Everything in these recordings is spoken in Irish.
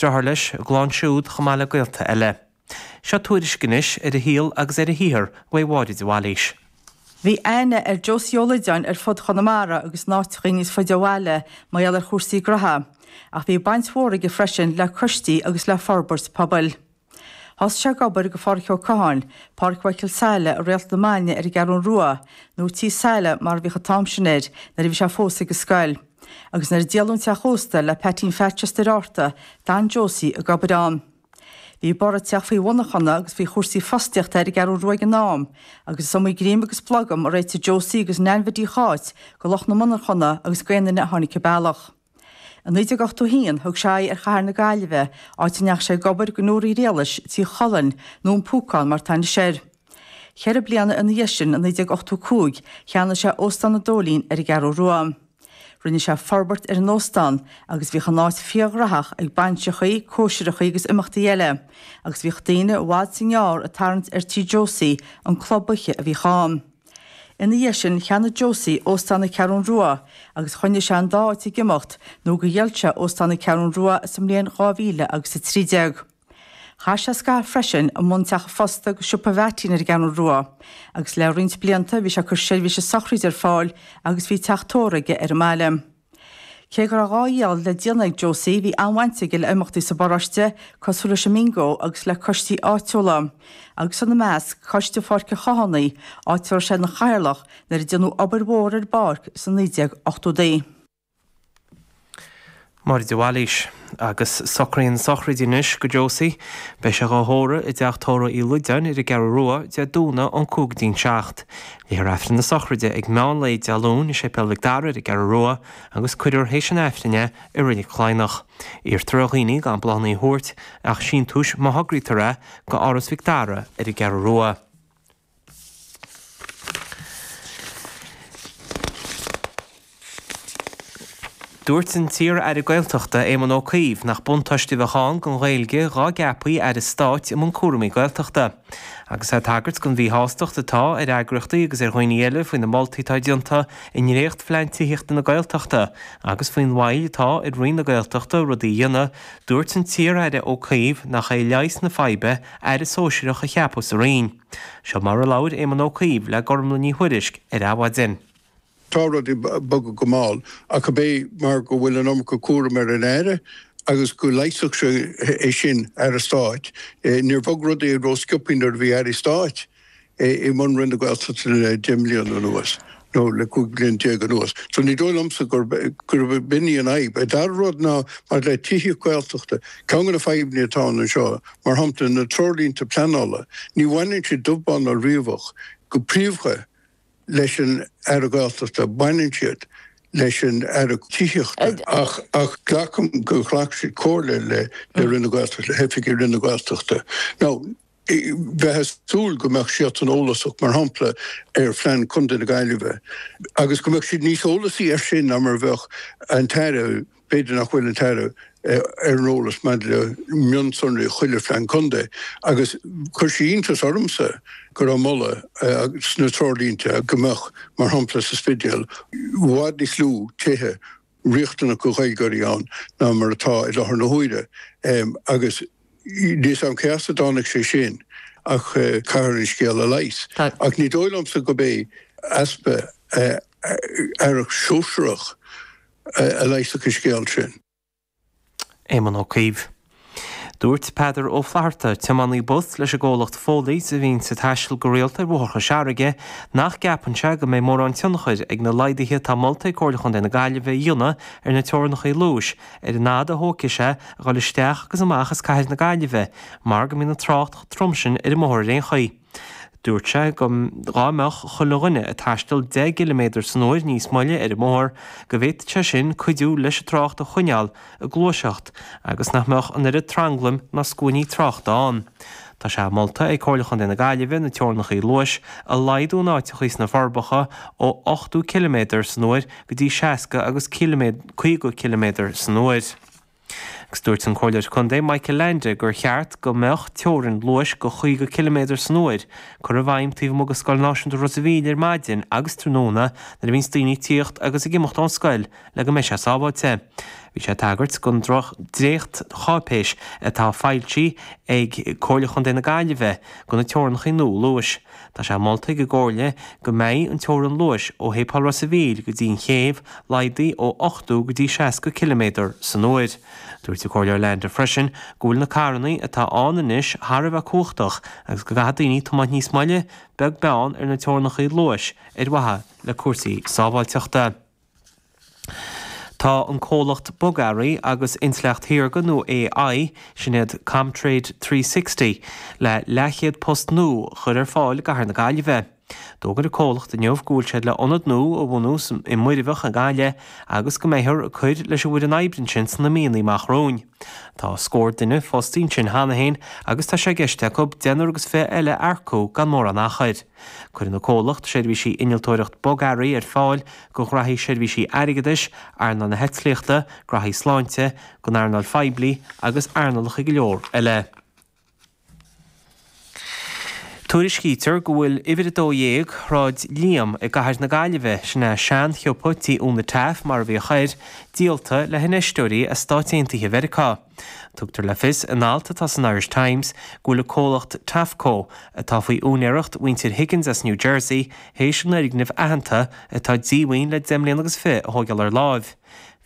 deartháir leis, a gclann siúd, chomh maith le gaolta eile. Seo tuairisc anois ar a shaol agus ar a shaothar uaidh Mháire de Bhailís. Bhí aithne ar Josie Ó Loideáin ar fud Chonamara agus in áiteachaí níos faide ó bhaile mar gheall ar chúrsaí gnotha, ach bhí baint mhór aige freisin le coistí agus le forbairt pobail. Thosaigh sé ag obair go Pháraic Ó Catháin, Páraic Mhichael Saile, i Réalt na Maidne ar an gCeathrún Rua, nó Tí Saile mar a bhíodh an t-am sin air, nuair a bhí sé fós ag an scoil. Agus nuair a díoladh an teach ósta le Peaitín Pheaits as Doire Fhatharta, d'fhan Josie ag obair ann. Bhí borradh ag teacht faoi mhonarchana agus faoi chúrsaí fostaíochta ar an gCeathrú Rua ag an am, agus is iomaí greim agus blogam a réitigh Josie agus Neain Mhidí Cháit go lucht na monarchana agus go aon duine a tháinig an bealach. I 1981 thug sé aghaidh ar chathair na Gaillimhe, áit a ndeachaigh sé ag obair go Newry Grealish, Tigh Cholairn, nó an Púcán mar atá anois air. Ceithre bliana ina dhiaidh sin, i 1985, cheannaigh sé Óstán an Dóilín ar an gCeathrú Rua. Rinne sé forbairt ar an óstán agus bhíodh an áit fíorghnaitheach ag bainseachaí, cóisireachaí agus imeachtaí eile, agus bhíodh daoine i bhfad is i ngearr ag tarraingt ar Tí Josie, an club oíche a bhíodh ann. Ina dhiaidh sin, cheannaigh Josie Óstán na Ceathrún Rua agus choinnigh sé an dá áit ag imeacht nó gur dhíol sé Óstán na Ceathrún Rua sa mbliain 2000 agus 13. Chaith sé scaitheamh freisin i mbun teach an phosta agus siopa Mheaití ar an gCeathrú Rua, agus le roinnt blianta bhí sé ag cur seirbhíse sochraide ar fáil agus bhí teach tórraimh aige ar an mbaile. Cé go raibh a dhá dhíol le déanamh ag Josie, bhí an-bhaint aige le himeachtaí sa bparóiste, cosúil leis an mBingo agus le coistí áitiúla, agus ina measc, Coiste Pháirc an Chathánaigh, áit a raibh sé ina chathaoirleach nuair a déanadh obair mhór ar an bpáirc sna 1980idí. Máire de Bhailís. Agus socruithe na sochraide anois go Josie. Beidh sé dhá thórramh i dteach tórraimh Uí Loideáin ar an gCeathrú Rua, Dé Domhnaigh ón 5 go dtí an 7. Léifear Aifreann na sochraide ag meán lae Dé Luain i Séipéal Mhic Dara ar an gCeathrú Rua agus cuirfear théis an Aifrinn é i Reilig Chladhnach. Iarrtar ar dhaoine gan bláthannaí a thabhairt ach síntiúis má thograítear é go Áras Mhic Dara ar an gCeathrú Rua. Dúirt an t-iar-aire Gaeltachta Éamon Ó Cuív nach buntáiste a bheadh ann don Ghaeilge dhá gceapfaí aire stáit i mbun cúraimí Gaeltachta. Agus é ag tagairt don mhíshástacht atá ar eagraíochtaí agus ar dhaoine eile faoi na moltaí atá déanta i ndréachtphlean tithíochta na Gaeltachta agus faoin mhoill atá ar Roinn na Gaeltachta rudaí a dhéanamh, dúirt an t-iar-aire Ó Cuív nach é leigheas na faidhbe aire sóisearach a cheapadh sa Roinn. Seo mar a labhair Éamon Ó Cuív le Gormlaith Ní Thuairisg ar Adhmhaidin. Tá rudaí bogtha go mall, ach ab é mar go bhfuil an iomarca cúraim ar an aire agus go leigheasfadh sé sin aire stáit? Níor bhog rudaí rósciobthaí nuair a bhí airí stáit é i mbun Roinn na Gaeltachta le 10 mbliana anuas, nó le 15 bliain anuas. So ní dóigh liomsa gurb in í an fhadhb. An dara rud ná, maidir le tithíocht Gaeltachta, ceann de na fadhbanna atá ann anseo, mar shampla, na treoirlínte pleanála, ní bhaineann siad dubh bán ná riabhach, go príomhdha, leis an Aire Gaeltachta, baineann siad leis an Aire Tithíochta. Ach glacaim gur ghlac siad comhairle le Roinn na Gaeltachta, le hoifigigh Roinn na Gaeltachta. Now. bheith ag súil go mbeadh siadsan eolasach, mar shampla, ar phlean Chontae na Gaillimhe, agus go mbeadh siad níos eolasaí air sin ná mar a bheadh an tAire, b'fhéidir nach bhfuil an tAire ar an eolas maidir le mionsonraí chuile phlean contae. Agus chuir sé iontas ormsa go raibh moladh sna treoirlínte go mbeadh, mar shampla, sa Spidéal, i bhfad níos lú tithe riachtanach do Ghaeilgeoirí ann ná mar atá i láthair na huaire, agus níl a fhios a'm cé as a dtáinig sé sin, ach caithfear an scéal a leigheas. Ach ní dóigh liomsa gurb é easpa aireacht shóisearach a leigheasfadh an scéal sin. Éamon Ó Cuív. Dúirt Peadar Ó Flatharta, tiománaí bus leis an gcomhlacht Foley's a bhíonn ag taisteal go rialta ar bhóithre Chois Fharraige, nach gceapann sé go mbeidh mórán tionchair ag na laghduithe atá molta ag Comhairle Chontae na Gaillimhe a dhéanamh ar na teorannachaí luais ar an fhad a thógfaidh sé a dhul isteach agus amach as cathair na Gaillimhe mar go mbíonn an trácht chomh trom sin ar an mbóthar ar aon chaoi. Dúirt sé go dhá mbeadh chuile dhuine ag taisteal deich gciliméadar san uair níos moille ar an mbóthar, go bhféadfadh sé sin cuidiú leis an trácht a choinneáil ag gluaiseacht agus nach mbeadh an oiread tranglaim ná scuainí tráchta ann. Tá sé molta ag Comhairle Chontae na Gaillimhe na teorannachaí luais a laghdú in áiteachaí sna Forbacha ó ochtó ciliméadar san uair go dtí seasca agus caoga ciliméadar san uair. Agus dúirt an Comhairleoir Contae Michael Leainde gur cheart go mbeadh teorainn luais go 50 ciliméadar san uair curtha i bhfeidhm taobh amuigh de Scoil Náisiúnta Ros a' Mhíl ar maidin agus tráthnóna nuair a bhíonns daoine ag tíocht agus ag imeacht ón scoil le go mbeidh sé sábháilte. Bhí sé ag tagairt don dréachtcháipéis atá foilsithe ag Comhairle Chontae na Gaillimhe do na teorannachaí nua luais. Tá sé molta ag an gComhairle go mbeidh an teorainn luais ó Shéipéal Ros a' Mhíl go dtí an chéibh laghdaithe ó 80 go dtí 60 ciliméadar san uair. Dúirt an Comhairleoir Leainde freisin go bhfuil na carrannaí atá ann anois thar a bheith cumhachtach agus go gcaithfidh daoine tiomáint níos moille beag beann ar na teorannachaí luais ar mhaithe le cúrsaí sábháilteachta. Tá an comhlacht bogearraí agus intleacht shaorga nó AI, sin iad ComTrade 360, le leathchéad post nua a chur ar fáil i gcathair na Gaillimhe. D'fhógair an comhlacht inniu go bhfuil siad le ionad nua a bhunú i Muirbheach i nGaillimh, agus go mbeifear ag cur leis an bhfoireann oibre ansin sna míonna amach romhainn. Tá scór duine fostaí ansin cheana féin agus tá sé i gceist acu deichniúr agus fiche eile a earcú gan mórán achair. Cuirfidh an comhlacht seirbhísí innealtóireacht bogearraí ar fáil go ghraithí seirbhísí airgeadais, earnáil na heitlíochta, graithí sláinte, don earnáil phoiblí agus earnálacha go leor eile. Tuairiscítear go bhfuil uimhir 12 Shráid Liam i gcathair na Gaillimhe, sin é seanshiopa tí Úna Taaffe mar a bhíodh air, díolta le hinfheisteoirí as Stáit Aontaithe Mheiriceá. Tugtar le fios in alt atá san Irish Times go bhfuil an comhlacht Taaffeco, atá faoi úinéireacht mhuintir Higgins as New Jersey, théis an fhoirgneamh aitheanta, atá díomhaoin le deich mbliana agus fiche, a thógáil ar láimh.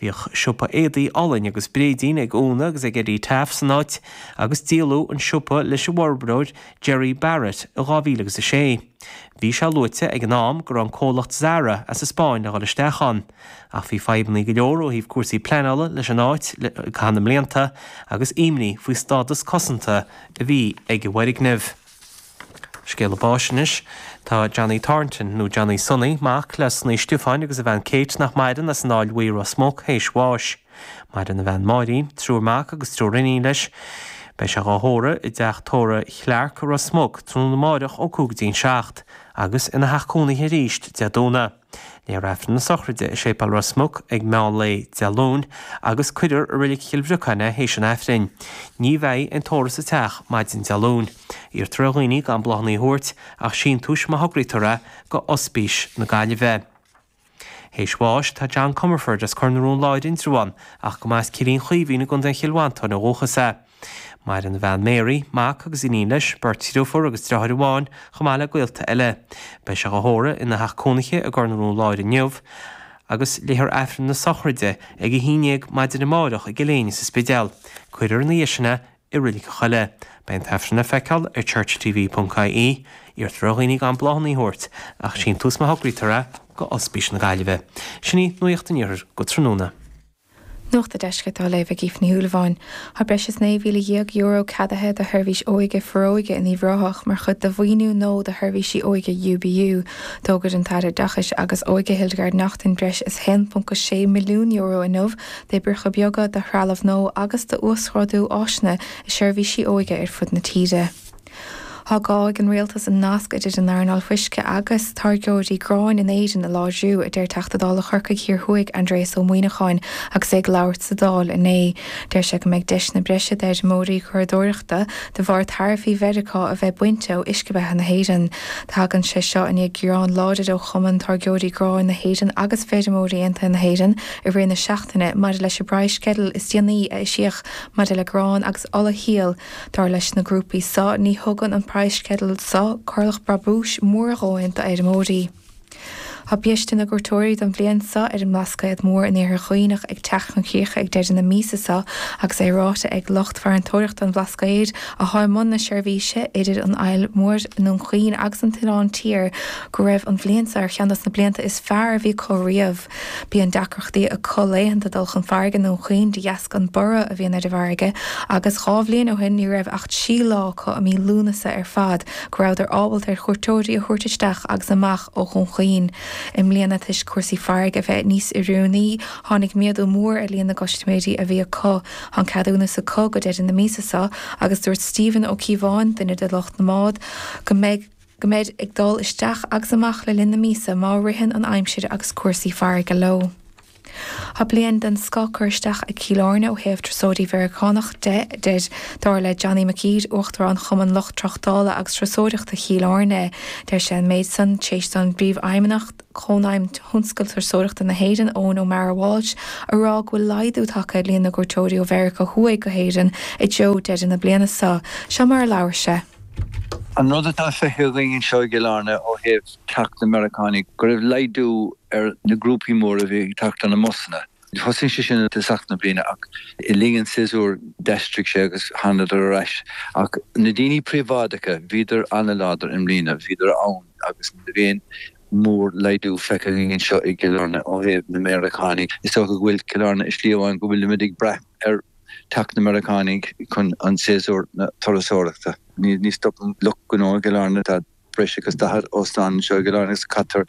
Bhíodh siopa éadaí olainn agus bréidín ag Úna agus ag Eddie Taaffe san áit agus díoladh an siopa leis an bhforbróir Gerry Barrett i 2000 agus a 6. Bhí sé luaite ag an am go raibh an comhlacht Zara as an Spáinn le dhul isteach ann. Ach bhí fadhbannaí go leor ó thaobh cúrsaí pleanála leis an áit i gcaitheamh na mblianta agus imní faoi stádas cosanta a bhí ag an bhfoirgneamh. Scéala báis anois. Tá Johnny Thornton, nó Johnny Sonaí, mac le Sonaí Stiofáin agus a bhean Kate, nach maireann, as an Aill Bhuí, Ros Muc, théis bháis. Maireann a bhean Máirín, triúr mac agus triúr iníon leis. Beidh sé dhá thórramh i dteach tórraimh Chlarke i Ros Muc tráthnóna amáireach ó cúig go dtí an seacht, agus ina theach cónaithe aríst Dé Domhnaigh. Léifear Aifreann na sochraide i Séipéal Ros Muc ag meán lae Dé Luain agus cuirfear i Reilig Chill Bhriocáin é théis an Aifrinn. Ní bheidh aon tórramh sa teach maidin Dé Luain. Iarrtar ar dhaoine gan bláthanna a thabhairt ach síntiúis má thograítear é go Ospís na Gaillimhe. Théis bháis tá John Comerford as Cor na Rón Láir, Indreabhán, ach go mba as Cillín Chaoimhín i gContae Chill Mhantáin ó dhúchas é. Maireann a bhean Mary, mac agus iníon leis, beirt dhriofúr agus driotháir amháin, chomh maith le gaolta eile. Beidh sé á thórramh ina theach cónaithe i gCor na Rón Láir inniu, agus léifear Aifreann na sochraide ag a haon dhéag maidin amáireach i gCill Éinne sa Spidéal. Cuirfear ina dhiaidh sin é i Reilig an Choilligh. Beidh an tAifreann le feiceáil ar churchtv.ie. Iarrtar ar dhaoine gan bláthanna a thabhairt ach síntiús má thograítear é go Ospís na Gaillimhe. Sin í nuacht an Iarthair go tráthnóna. Nuacht an Deiscirt á léamh ag Aoife Ní Shúilleabháin. Tá breis is €19,000 ceadaithe do sheirbhís óige Foróige in Uíbh Ráthach mar chuid de mhaoiniú nua do sheirbhísí óige UBU. D'fhógair an tAire Oideachais agus Óige, Hildegarde Naughton breis is €1.6 milliún inniu d'oibreacha beaga, do threalamh nua agus d'uasghrádú áiseanna i seirbhísí óige ar fud na tíre. Caithfidh an rialtas an nasc idir an earnáil fuisce agus táirgeoirí gráin in Éirinn a láidriú, a deir Teachta Dála Chorcaigh Thiar Thuaidh Aindreas Ó Muíneacháin agus é ag labhairt sa Dáil inné. Deir sé go mbeidh deiseanna breise d'fheirmeoirí curadóireachta de bharr taraifí Mheiriceá a bheith bainte ó uisce beatha na hÉireann. Tagann sé seo i ndiaidh gearán láidir ó Chumann Táirgeoirí Gráin na hÉireann agus Feirmeoirí Aontaithe na hÉireann i rith na seachtaine maidir leis an bpraghas sceideal is déanaí a eisíodh maidir le grán agus olashíol Dar leis na grúpaí seo, ní thugann an praghas-sceideal seo corrlach brabúis mór a dhóthain d'fheirmeoirí. Tá biaiste na gcuairteoirí don bhliain seo ar an mBlascaod Mór in Iarthar Dhuibhneach ag teacht chun críche ag deireadh na míosa seo agus é ráite ag lucht farantóireachta an Bhlascaoid atá i mbun na seirbhíse idir an Fhaill Mhór, Dún Chaoin agus an tOileán Tiar go raibh an bhliain seo ar cheann dos na blianta is fearr a bhí acu riamh. Bíonn deacrachtaí acu laethanta dul chun farraige i nDún Chaoin de dheasca an borradh a bhíonn ar an bhfarraige agus dhá bhliain ó shin ní raibh ach trí lá acu i mí Lúnasa ar fad go rabhadar ábalta ar chuairteoirí a thabhairt isteach agus amach ó Dhún Chaoin. I mbliana toisc cúrsaí farraige bheith níos oiriúnaí tháinig méadú mór ar líon na gcustaiméirí a bhí acu. Tá an ceadúnas acu go deireadh na míosa seo agus dúirt Stephen Ó Cíobháin, duine de lucht na mbád, go mbeidh. go mbeid ag dul isteach agus amach le linn na míosa má ritheann an aimsir agus cúrsaí farraige leo. Tá bliain den scoth curtha isteach ag Cill Airne ó thaobh turasóirí Meiriceánacha de, dar le Johnny McGuire, Uachtarán Chumann Lucht Tráchtála agus Turasóireachta Chill Airne. Deir sé an méid san, tar éis do Phríomhfheidhmeannach Chónaidhm Thionscal Turasóireachta na hÉireann, Eoghan O'Mara Walsh, a rá go bhfuil laghdú tagtha ar líon na gcuairteoirí ó Mheiriceá Thuaidh go hÉirinn i dtreo deireadh na bliana seo. Seo mar a labhair sé. An rud atá feicthe againn anseo i gCill Airne ó thaobh teacht na Meiriceánaigh, go raibh laghdú ar na grúpaí móra a bhí ag teacht ar na mbusanna. Thosaigh sé sin i dtosach na bliana ach le linn an tséasúir d'aistrigh sé agus thángadar ar ais. Ach na daoine príobháideacha, bhíodar an-láidir i mbliana, bhíodar ann agus níl aon mhór-laghdú feicthe againn anseo i gCill Airne ó thaobh na Meiriceánaigh. Is dócha go bhfuil Cill Airne i slí amháin go bhfuilimid ag brath ar teacht na Meiriceánaigh chun an tséasúir na turasóireachta. Ní stopann lucht gnó i gCill Airne, tá breis agus daichead óstán anseo i gCill Airne agus caitear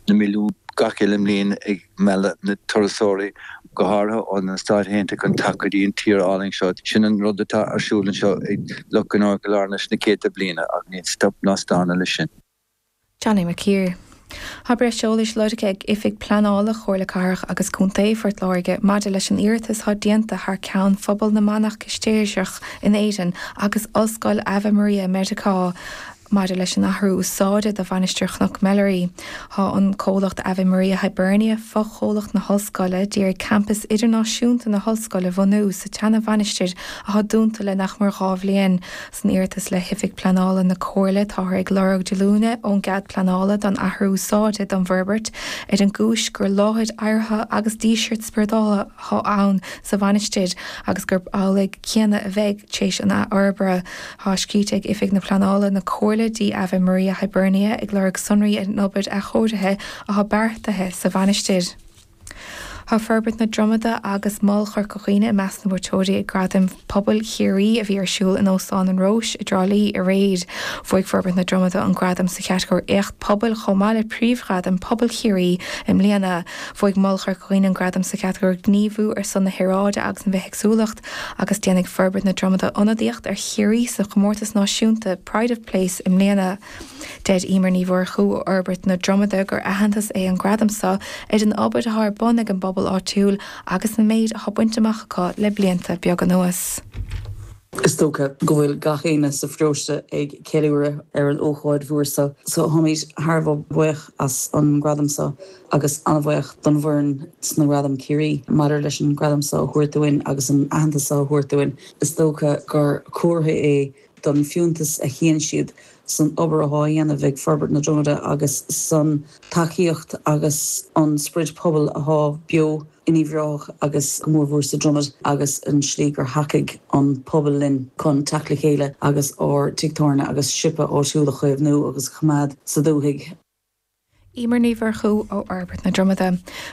na milliúin gach uile mbliain ag mealladh na turasóirí, go háirithe ó na Stáit Aontaithe, chun teacht go dtí an tír álainn seo. Sin an rud atá ar siúl anseo ag lucht gnó i gCill Airne leis na céadta bliana ach níl stop ná staonadh leis sin. Johnny McGuire. Tá breis eolais lorgtha ag Oifig Pleanála Chomhairle Cathrach agus Contae Phort Láirge maidir leis an iarratas atá déanta thar ceann phobal na manach Cistéirseach in Éirinn agus Ollscoil Ave Maria i Meiriceá maidir leis an athrú úsáide do Mhainistir Chnoc Mheilearaí. Tá an comhlacht Ave Maria Hibernia, fochomhlacht na hOllscoile, d'iarraidh campas idirnáisiúnta na hOllscoile bhunú sa tseana-mhainistir atá dúnta le nach mór dhá bhliain. San iarratas le hOifig Pleanála na Comhairle táthar ag lorg diolúine ón gcead pleanála don athrú úsáide don bhforbairt ar an gcúis gur láthair adhartha agus dísirt spioradála atá ann sa mhainistir agus gurb amhlaidh céanna a bheidh tar éis an athfhorbartha. Tá scríofa ag Oifig na Pleanála na Comhairle go dtí Ave Maria Hibernia ag lorg sonraí ar an obair athchóirithe atá beartaithe sa mhainistir. Tá Forbairt na Dromoda agus Mol Chorca Dhuibhne i measc na mbuaiteoirí ag Gradaim Pobail Chiarraí a bhí ar siúl in Óstán an Róis i dTrá Lí aréir. Bhuaigh Forbairt na Dromoda an gradam sa chatagóir Éacht Pobail chomh maith le Príomhghradam Pobail Chiarraí i mbliana. Bhuaigh Mol Chorca Dhuibhne an gradam sa chatagóir Gníomhú ar son na hAeráide agus an Bhithéagsúlacht agus déanfaidh Forbairt na Dromoda ionadaíocht ar Chiarraí sa chomórtas náisiúnta Pride of Place i mbliana. Deir Emer Ní Mhurchú ó Fhorbairt na Dromoda gur aitheantas é an gradam seo ar an obair atá ar bun ag an bpobal áitiúil agus an méid atá bainte amach acu le blianta beag anuas. Is dócha go bhfuil gach éinne sa pharóiste ag ceiliúradh ar an ócáid mhór seo so táimid thar a bheith buíoch as an gradam seo agus an-bhuíoch don bhfoireann sna Gradaim Chiarraí. Maidir leis an gradam seo a thabhairt dúinn agus an aitheantas seo a thabhairt dúinn, is dócha gur comhartha é don bhfiúntas a chíonn siad san obair athá á dhéanamh ag Forbairt na Dromoda agus san tacaíocht agus an sprid pobail athá beo in Uíbh Ráthach agus go mór mhór sa Dromad agus an tslí gur thacaigh an pobal linn chun teacht le chéile agus ár tigh tábhairne agus siopa áitiúil a chaomhnú agus a choimeád sa dúthaigh. Emer Ní Mhurchú ó Fhorbairt na Dromoda.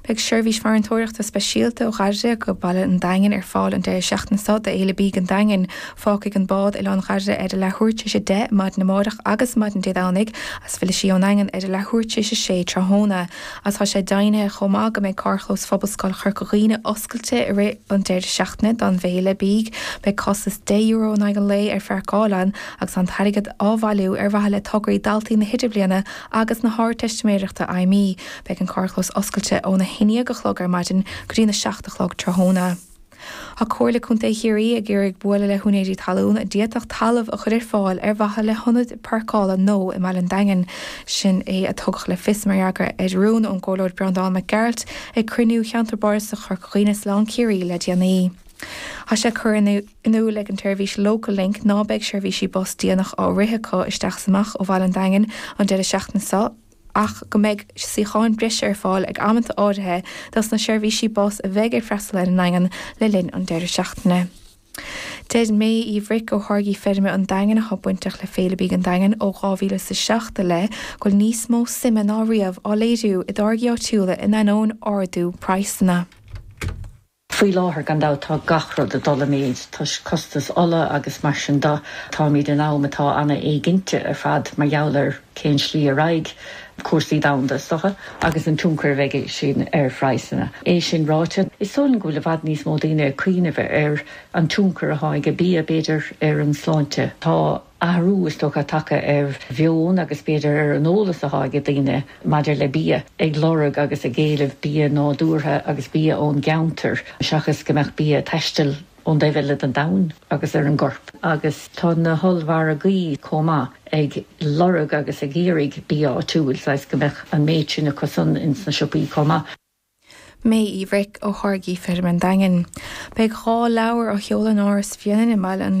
Beidh seirbhís farantóireachta speisialta ó Dhairire go dtí Baile an Daingin ar fáil an deireadh seachtaine seo do Fhéile Bídh an Daingin. Fágfaidh an bád Oileán Dhairire ar a leathuair tar éis a deich maidin amárach agus maidin Dé Domhnaigh as fillfidh sí ón Daingean ar a leathuair tar éis a sé tráthnóna as tá sé deimhnithe chomh maith go mbeidh carrchlós Phobalscoil Chorca Dhuibhne oscailte i rith an deireadh seachtaine don bhFéile Bídh. Beidh costas deich euro in aghaidh an lae ar pháirceáil ann. agus an t-airgead á bhailiú ar mhaithe le tograí daltaí na hIdirbliana agus na hArdteistiméireachta Fheidhmí. Beidh an carrchlós oscailte óna haon déag a chlog ar maidin go dtí na seacht a chlog tráthnóna. Tá Comhairle Contae Chiarraí ag iarraidh bualadh le húinéirí talún a d'fhéadfadh talamh a chur ar fáil ar mhaithe le hionad páirceála nua i mBaile an Daingin. Sin é a tugadh le fios mar fhreagra ar rún ón gComhairleoir Breandán Mac Gearailt ag cruinniú Cheantar Bardasach Chorca Dhuibhne-Oileán Ciarraí le déanaí. Tá sé curtha. in iúl ag an tseirbhís Local Link ná beidh seirbhísí bus déanach á rith acu isteach is amach ó Bhaile an Daingin an deireadh seachtaine seo ach go mbeidh suíocháin breise ar fáil ag amanta áirithe dos na seirbhísí bus a bheidh ag freastal ar an nDaingean le linn an deireadh seachtaine. Deir Mae Uí Bhruic ó Tháirgí Feirme an Daingin atá bainteach le Féile Bídh an Daingin ó 2000 is a seacht i leith go bhfuil níos mó suime ná riamh á léiriú i dtáirgí áitiúla in ainneoin ardú praghsanna. Faoi láthair, gan dabht, tá gach rud ag dul i méid toisc costas ola agus mar sin de. Táimid in am atá an-éiginnte ar fad mar gheall ar cén slí a raghaidh cúrsaí domhanda, is dócha, agus an tionchar a bheidh aige sin ar phraghsanna. É sin ráite, is dóigh liom go bhfuil i bhfad níos mó daoine ag cuimhneamh ar an tionchar atá ag bia, b'fhéidir, ar an sláinte. Tá. athrú is dócha tagtha ar mheon agus b'fhéidir ar an eolas atá ag daoine maidir le bia, ag lorg agus ag éileamh bia nádúrtha agus bia ón gceantar seachas go mbeadh bia ag taisteal ón dtaobh eile den domhan agus ar an gcorp. Agus tá na hollmhargaí chomh maith ag lorg agus ag iarraidh bia áitiúil, saghas go mbeadh an méid sin acusan ins na siopaí chomh maith. Mae Uí Bhruic ó Tháirgí Feirme an Daingin. Beidh dhá leabhar á sheoladh in Áras Bhréanainn i mBaile an.